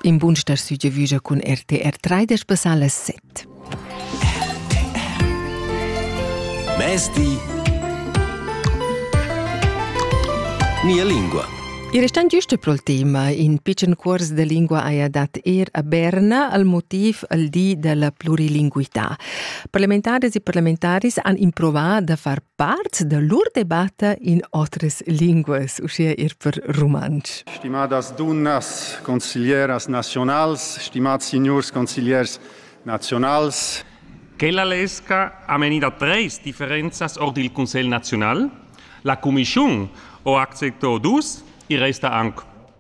In bun star südevüja cun RTR 3 da spassar las 7. Mezdi Mia lingua. I restan giusto pro tema. In pitschen cuors de lingua haja dat er a Berna al motiv al di della plurilinguità. Parlamentares e parlamentaris han improvat da far Part da lur debatta in otras linguas, uschia ir per rumantsch. Stimadas dunnas, consiglieras nazionals, stimats signurs consigliers nazionals. Quella lesca ha menì da treis differenzas ord il Cussegl naziunal. La cumischun ho acceptò dus, i resta anc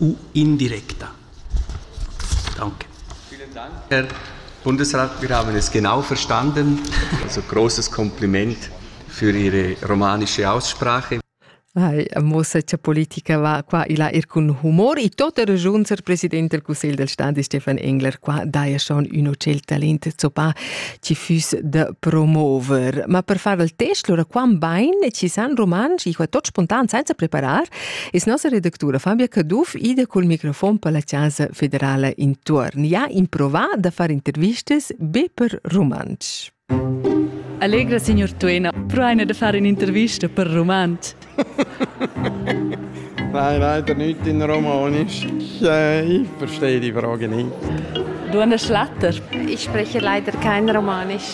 u indirecta. Danke. Vielen Dank. Herr Bundesrat, wir haben es genau verstanden. Also großes Kompliment für Ihre romanische Aussprache. Hai, mossa cha politica va qua e là ir cun humor e tot er regiun ser president del Cussegl del Staat Stefan Engler qua daja schon ün hotel talent zoppa ci füss da promover. Ma per far il test lura quam bain ci san romans i qua tot spontan senza preparar Es nossa redactura Fabia Caduff ida cul microfon per la Chasa federala intuorn ja improvà da far intervistas be per rumantsch. Allegra signor Tuena, proaina da fare un'intervista per rumantsch. Nein, leider nicht in Romanisch. Ich verstehe die Frage nicht. Du an der Schlatter? Ich spreche leider kein Romanisch.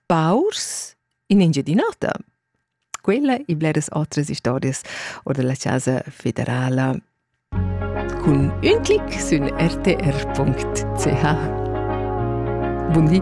paurs in Engiadin'Ota. Quella e bleras otras historias or della Casa Federala. Cun un clic sün rtr.ch. Buon di!